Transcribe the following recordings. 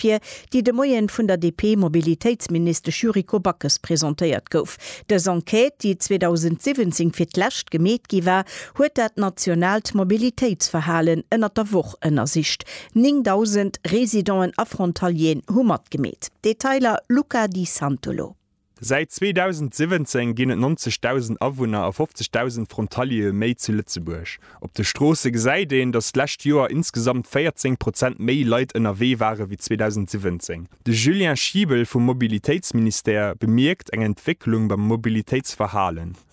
Papier, déi de Moien vun der DP-Mobilitéitsministesch Yuriko Backes presentéiert gouf. Dës Enquête, déi 2017 fir d'lescht gemeet gi war, huet dat nationaalt Mobilitéitsverhalen ënnert der Woch ënnersicht. 9.000 Residenten a Frontalieren hu matgemeet. Detailer, Luca Di Santolo. Säit 2017 ginn et 90.000 Awunner a 50.000 Frontaliere méi zu Lëtzebuerg. Op de Stroosse gesäit een, datt d'lescht Joer insgesamt 14 Prozent méi Leit ënnerwee ware wéi 2017. De Julien Schiebel vum Mobilitéitsministère bemierkt eng Entwécklung beim Mobilitéitsverhalen.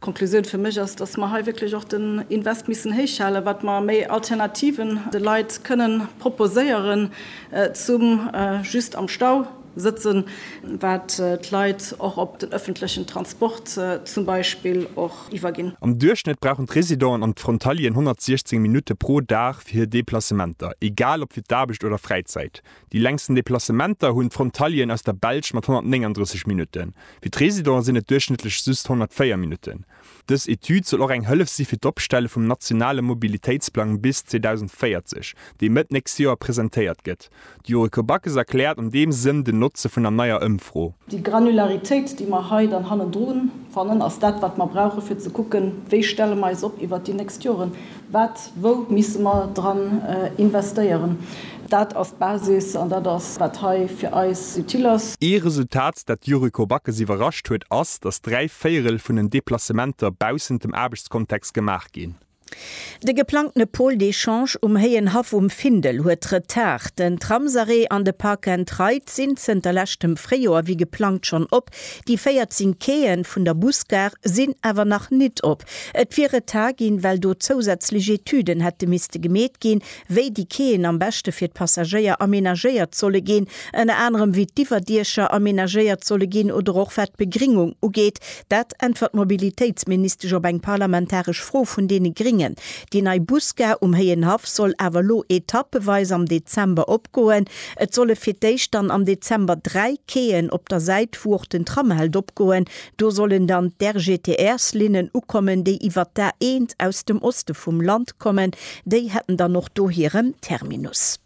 D'Konklusioun fir mech ass, dass mer hei wierklech och den Invest missen héich halen, wat mer méi Alternativen de Leit kënnen proposéieren, zum just am Stau sëtzen, wat d'Leit och op den öffentlechen Transport zum Beispill och iwwerginn. Am Duerchschnëtt brauchen d'Residenten an d'Frontalieren 116 Minutte pro Dag fir hir Deplacementer, egal ob fir d'Aarbecht oder Fräizäit. Déi längsten Deplacementer hunn d'Frontalieren aus der Belsch mat 139 Minutten. Fir d'Residenten sinn et duerchschnëttlech just 104 Minutten. Dës Etüd soll och eng Hëllef si fir d'Opstelle vum nationale Mobilitéitsplang bis 2040, dee Mëtt nächst Joer presentéiert gëtt. D'Yuriko Backes erkläert an deem Sënn den Notze vun der neier Ëmfro. Déi Granularitéit, déi mer hei dann hannendru fannen, ass dat, wat mer brauchen, fir ze kucken, wéi stelle mer eis op iwwert déi nächst Joren. Wat, wou misse mer dran investéieren? Dat ass d'Basis an dat ass, wat hei fir eis utile ass. Ee Resultat, dat d'Yuriko Backes iwwerrascht huet, ass, datt dräi Véierel vun den Deplacementer baussent dem Aarbechtskontext gemaach ginn. De geplangtene Pôle d'échange um Héien Haff um Findel huet Retard. Den Tramsarrêt an de Park and Ride sinn zënter leschtem Fréijoer wéi geplangt schonn op, Déi 14 Quaien vun der Busgare sinn awer nach nit op. Et wier Retard ginn, well do zousätzlech Etüden hätte misste gemeet ginn, wéi déi Quaien am beschte fir d'Passagéier amenagéiert solle ginn, ënner anerem wéi d'Iwwerdiecher amenagéiert solle ginn oder och wat d'Begringung ugeet. Dat äntwert d'Mobilitéitsministesch op eng parlamentaresch Fro vun deene Gringen. Déi nei Busgare um Héienhaff soll awer elo etappeweis am Dezember opgoen. Et solle fir d'éischt dann am Dezember dräi Quaien op der Säit, wou och den Tram hält, opgoen. Do sollen dann d'RGTR-Linnen ukommen, déi iwwert d'A1 aus dem Oste vum Land kommen. Déi hätten dann och do hiren Terminus.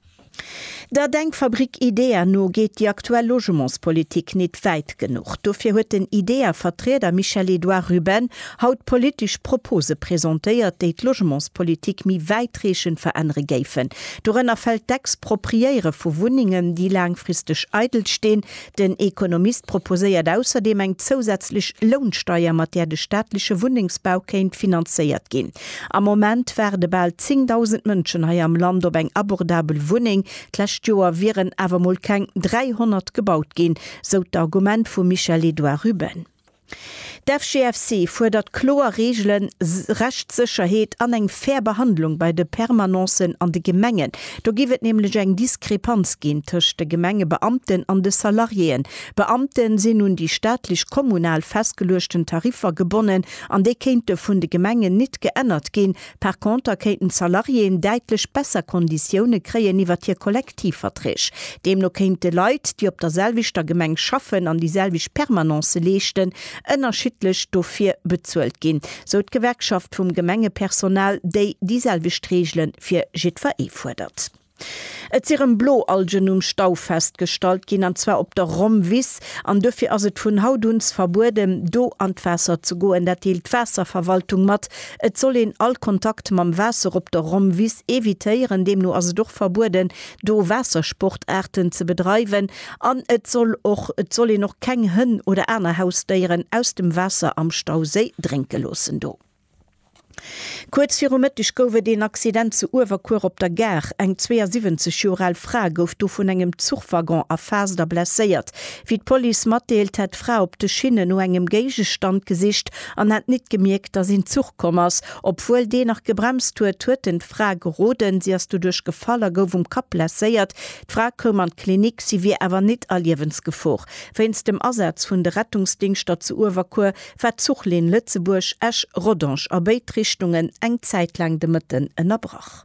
Der Denkfabrik IDEA no geet déi aktuell Logementspolitik nit wäit genuch. Dofir huet den IDEA-Vertrieder Michel-Edouard Ruben haut politesch Propose presentéiert, déi d'Logementspolitik méi wäitreechend verännere géifen. Dorënner fält d'Expropriéiere vu Wunnengen, déi laangfristeg eidel stinn. Den Economist proposéiert ausserdeem eng zousätzlech Lounsteier, mat där de staatleche Wunnengsbau kéint finanzéiert ginn. Am Moment waarde bal 10.000 Mënschen hei am Land op eng abordabel Wunneng. D'lescht Joer wieren awer mol keng 300 gebaut ginn, sou d'Argument vum Michel-Edouard Ruben. D'FGFC fuerdert kloer Reegelen, Rechtssécherheet an eng fair Behandlung bei de Permanencen an de Gemengen. Do géif et nämlech eng Diskrepanz ginn tëscht de Gemengebeamten an de Salariéen. D'Beamte sinn un déi staatlech, kommunal festgeluechten Tariffer gebonnen an déi kéinte vun de Gemengen nit geännert ginn, Par conter kéinten d'Salariéen däitlech besser Konditioune kréien iwwert hir Kollektivverträg. Deemno kéinte Leit, déi op der selwechter Gemeng schaffen an déi selwecht Permanencë leeschten, ënnerschiddlech dofir bezuelt ginn, sou d'Gewerkschaft vum Gemengepersonal, déi déi selwecht Reegele fir jiddwer ee fuerdert. Et si rëm Bloalgen um Stau festgestallt ginn, an zwar op der Rommwiss. An duerfir ass et vun haut un verbueden, do an d'Waasser ze goen. Dat deelt d'Waasserverwaltung mat. Et soll een all Kontakt mam Waasser op der Rommwiss evitéieren. Deemno ass et och verbueden, do Waassersportaarten ze bedreiwen. An et soll och et soll een och keng Hënn oder aner Hausdéieren aus dem Waasser am Stauséi drénke loossen do. Kuerz viru Mëtteg gouf et een Accident zu Uewerkuer op der Gare. Eng 72 Joer al Fra gouf do vun engem Zuchwaggon erfaasst a blesséiert. Wéi d'Police matdeelt, hätt d'Fra op de Schinne no engem Géigestand gesicht an hätt nit gemierkt, datt een Zuch komm ass. Obwuel deen nach gebremst huet, huet en d'Fra geroden. Si ass doduerch gefall a gouf um Kapp blesséiert. D'Fra koum an d'Klinik, si wier awer nit a Liewensgefor. Wéinst dem Asaz vun de Rettungsdingschter zu Uewerkuer war d'Zuchlinn Lëtzebuerg-Esch-Rodange a béid Richtungen eng Zäit laang de Mëtten ënnerbrach.